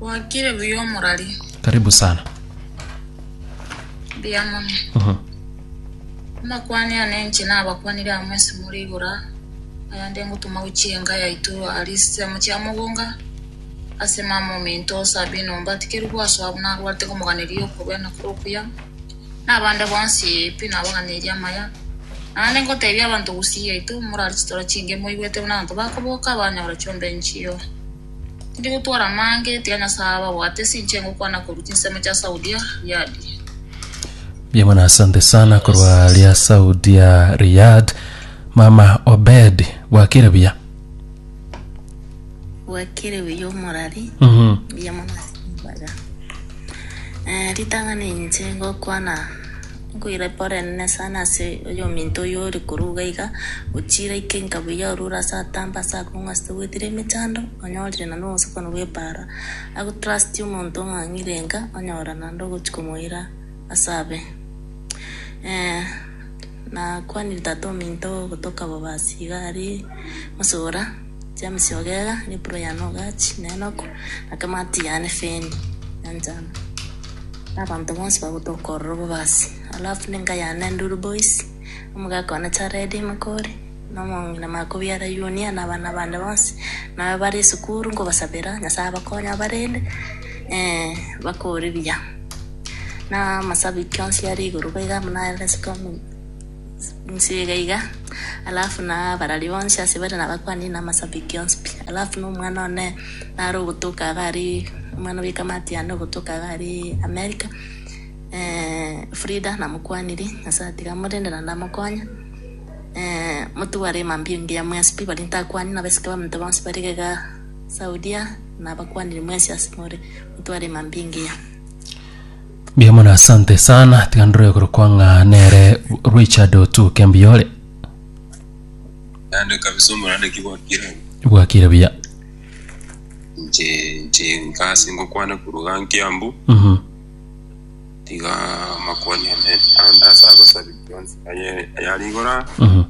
Gwakire buya omorari. Karibu sana. Mbuya mono. Mhm. Amakwani ane enche nabakwanire amo ase more igoro aa. Ayande ngotoma gochia enka yaito aria chisemo chia mogonga ase mama ominto Sabina ombatikerwe gwasoa buna arwarete komoganeria okobena kore okuya. Na abande bonsi pi nabaganeirie amaya. Naende ngotebia abanto gusii yaito morare chitora chinge moigwete buna abanto bakoboka banyora chionda enchio. Tindi gotwara amange, tiga Nyasae abe abwate ase inche, ngokwana korwa chinsemo chia Saudia, Riyadi. Mbuya mono asante sana korwa ria saudia riyad mama obed bwakire buya bwakire buya omorari Mhm. mbuya mono ase mbaga Eh, ritang'ani inche ngokwana Nkoirapa orenene sana ase oyominto oyio ore korwa iga iga, ochiire aike enka buya orure ase atamba ase akong'u ase togwetire emechando, onyorire na nobosokoni bw'epaara. Agotrustirie omonto ong'ang'ire enka, onyora naende ogochia komoira ase abe. Eh, nakwanire tata ominto ogotoka bobaasi iga aria mosubura. James Ogega, Nipuro yane ogachi nenoko, na kemati yane feni ya njano, na abanto bonsi bagotwa okorora obobasi. Alafu nenka yane Nduru Boys, omogaka one Charedi Mokori, na omong'ina Makobiara Yunia, na abana bande bonsi, na abe bare esukuru nkobasabera Nyasaye abakonye abarende eh, bakore buya. Na amasabi ki onsi are igoro baiga buna are ase Kameme. Inse iga iga, alafu na abarari bonsi ase bare nabakuani na amasabiki onsi pi. Alafu na omwana one nare ogotoka iga aria, omwana bwe kamati yane ogotoka iga aria America, eh, Frida namokuaniri, Nyasaye tiga amorende naende amokonye. Eh, motware mambia engiya mwensi pi, baria ntakuani na abasike baminto bonsi bare iga iga Saudia, nabakuaniri mwensi ase more, motware mambia engiya. Mbuya mono asante sana tiga ndore korokwa ng'a nere Richard otuke mbuya ore naende kabisa omorandeki gwakire bwakire buya nche nche nkasi ngokwana kuruga nkiambu Mhm. tiga makwani ane andasa agosabi yonsi aye- ayari igora Mhm.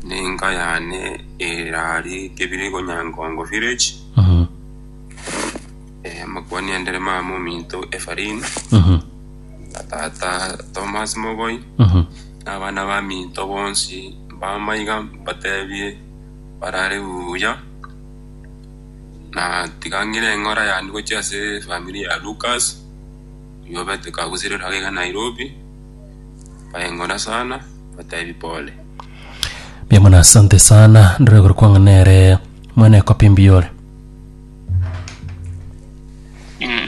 ninka yane erari kebiri gonyankongo village Mhm. Eh, Makuani endere mama ominto Efarin, Mhm. na tata Thomas Mogoi, Mhm. na abana ba minto bonsi bamaiga mbatebie barare buya. Na tigang'ire eng'ora yane gochia ase famiri ya Lucas, oyio obete kagusire ororo agaiga Nairobi, bayeng'ora sana, mbatebi pole. Mbuya mono asante sana ndore gore kwang'a nere mwene ekopi mbiyore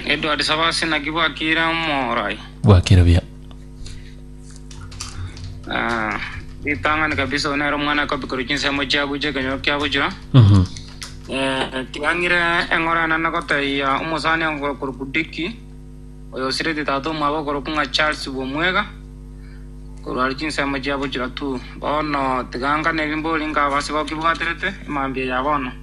Edward Sabasi naki bwakire omorai. Bwakire buya. Ah, ritang'ani kabisa one ero mwana akobikora chinsemo chiago chia ekenyoro kiagochira Mhm. Eh, tiang'ire eng'ora enene gotaiya omosani ogokorokwa diki oyo osireti tata omwabo okorokwa ng'a charles bwomwega korwari chinsemo chiagochira tu bono tiga ngane ebimbori ngaba ase bakibwaterete emambia ya bono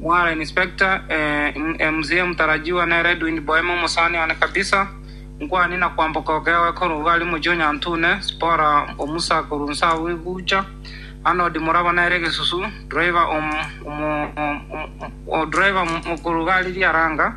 Mwara Inspector, eeh, mzee mtarajiwa nere Edwin Boeme omosani one kabisa, nkwane na kwamboka okegoe korwa iga aria mochie o Nyantune, Zipora omusa korwa Nsahu egucha, Arnold Muraba nere egesusu, driver om, omo, om, om, o driver korwa iga aria Riaranga,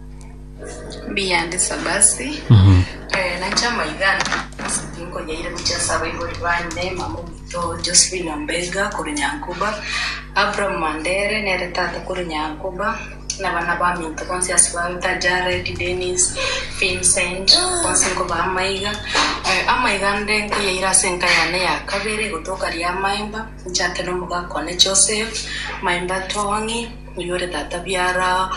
Mbiyande Sabasi, eh, nainche amaigani ase tinkonyaire gochia ase abaibori bane, mama omoito Josephine Ombenga korwa Nyankoba, Abraham Mandere nere tata korwa Nyankoba, na abana baminto bonsi ase bawete Jared, Dennis, Vincent, bonsi nkobaa amaiga. Eh, amaiga ande nkoyaire ase enka yane ya kabere gotoka Riamaemba, nchake na omogaka one Joseph, Maemba Tong'i, Oyore tata biara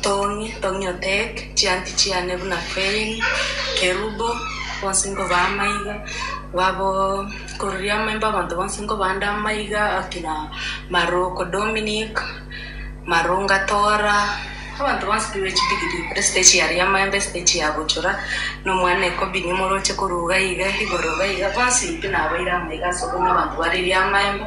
Tony, Tony Otek, chianti chiane buna Fein, Kerubo, bonsi nkoba amaiga, babo kororia amaimbo abanto bonsi nkoba nde amaiga, akina Maroko Dominic, Marunga Tora, abanto bonsi baibe chidigiri kore esete chiaria amaemba esete chia bochora, na omwana ekobini moroche korwa iga iga igoro iga iga, bonsi pi nabaire amaiga ase okonya abanto bariria amaemba.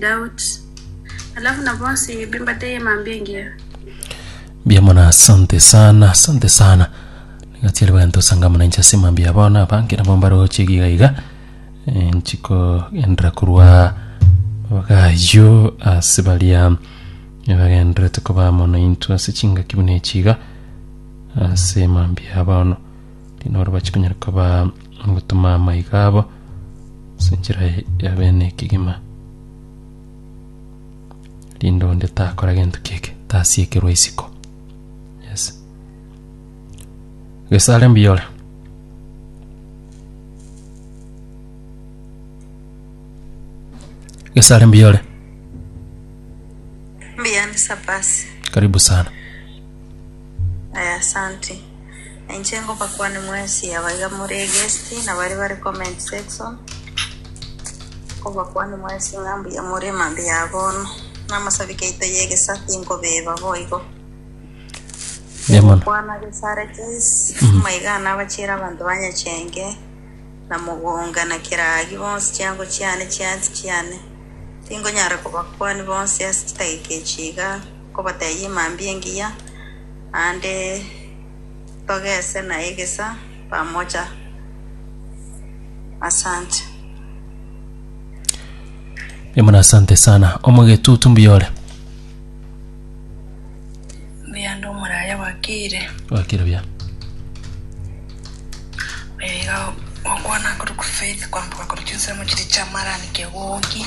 Doubt. Alafu na bonsi bimbateye mambia engiya. Mbuya mono asante sana asante sana nigatiari bagento sangamana inche ase mambia abana abange nabo mbaroche iga iga Eh, nchiko endera korwa bagayo ase baria bagenderete koba mono intwe ase chingaki buna echiga ase mambia abano Tinoro bachikonyara koba gotuma amaiga abo ase enchera ya bene ekegima. Rinde onde takora gento kieke tasiekerwa isiko. Yes. Gesare mbiyora. Gesare mbiyore. Mbiani sapasi. Karibu sana. Aya, asante. Na inche ngobakwane mwensi abaiga more guest na baria bare comment section, nkobakwane mwensi ng'a mbuya more mambia ya bono. Na amasabi kaito y'egesa tinkobeba boigo. Mbuya mono. Kwana gesare Joyce, maiga nabachiera abanto ba Nyachenge, na Mogonga, na Kiragi bonsi chiango chiane, chiansi chiane. Tingonyara kobakwani bonsi ase chidageka echi iga. Nkobatebia mambia engiya, naende togese na egesa pamoja. Asante. Nimuna asante sana. Omogetutu mbuya ore. Mbuya ndi omoraya bwakire. Bwakire buya. Oyo iga okwana korokwa Faith kwamboka korwa chinsemo chiria chi'amarani kegoki.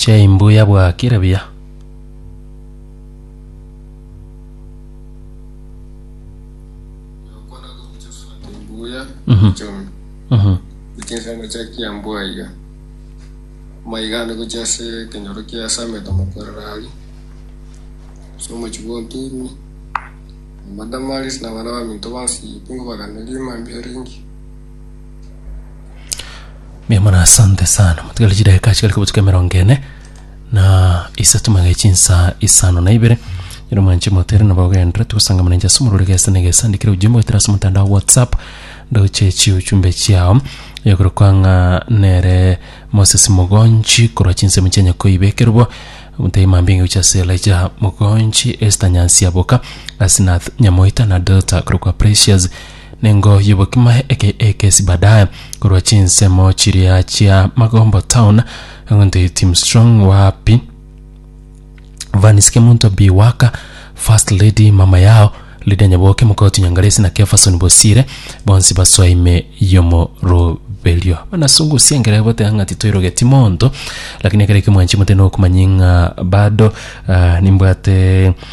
Chai mbuya bwakire buya. Okwana gobucha fanta embuya Mhm. echomi Mhm. gochia ase amachaki ya mbwa iga maiga ande gochia ase ekenyoro kia sameta mokorera aria ase omochi bwa oturwa amadamaris na abana baminto bonsi pingo baganeria mambia ringi Mbuya mono asante sana motigari chidakika chigari kobotuka emerongo ene na isato magana chinsa isano na ibere ero mwanche motere nabo ogenderete togosanga mana inche ase omorwere gesa na egesa ndikire ujumbe goetera ase omotandao wa whatsapp ndoche chiuchumbe chiao eyorokwa ng'a nere moses mogonchi korwa chinsemo chia nyakoiba ekerobo omotebi mambia inga gochia ase elijah mogonchi esther nyansiaboka asinath nyamoita na delta korokwa precious Ningo y'obokima eke ekesi baadaye korwa chinsemo chiria chia Magombo Town, egento Tim Strong wapi Vanis Kemunto Bi Waka, First Lady mama yao Lydia Nyaboke Mokoti Nyangalesi na Kefason Bosire bonsi basoa ime y'omoroberio. Banasungusia engera egoteba ng'a titoirogeti monto, lakini ekero ekio mwanchimute nokomanya ng'a bado ah, nimbwate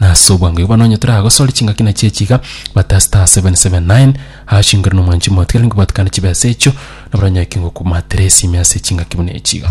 Na ase obwango igo nonye toragosore chingaki na chiechi iga, Mathayo star 779 ashingore nomwanchi omotigare nkobatukane chibesa echio, nabora onye kingokumatere esime ase chingaki buna echi iga.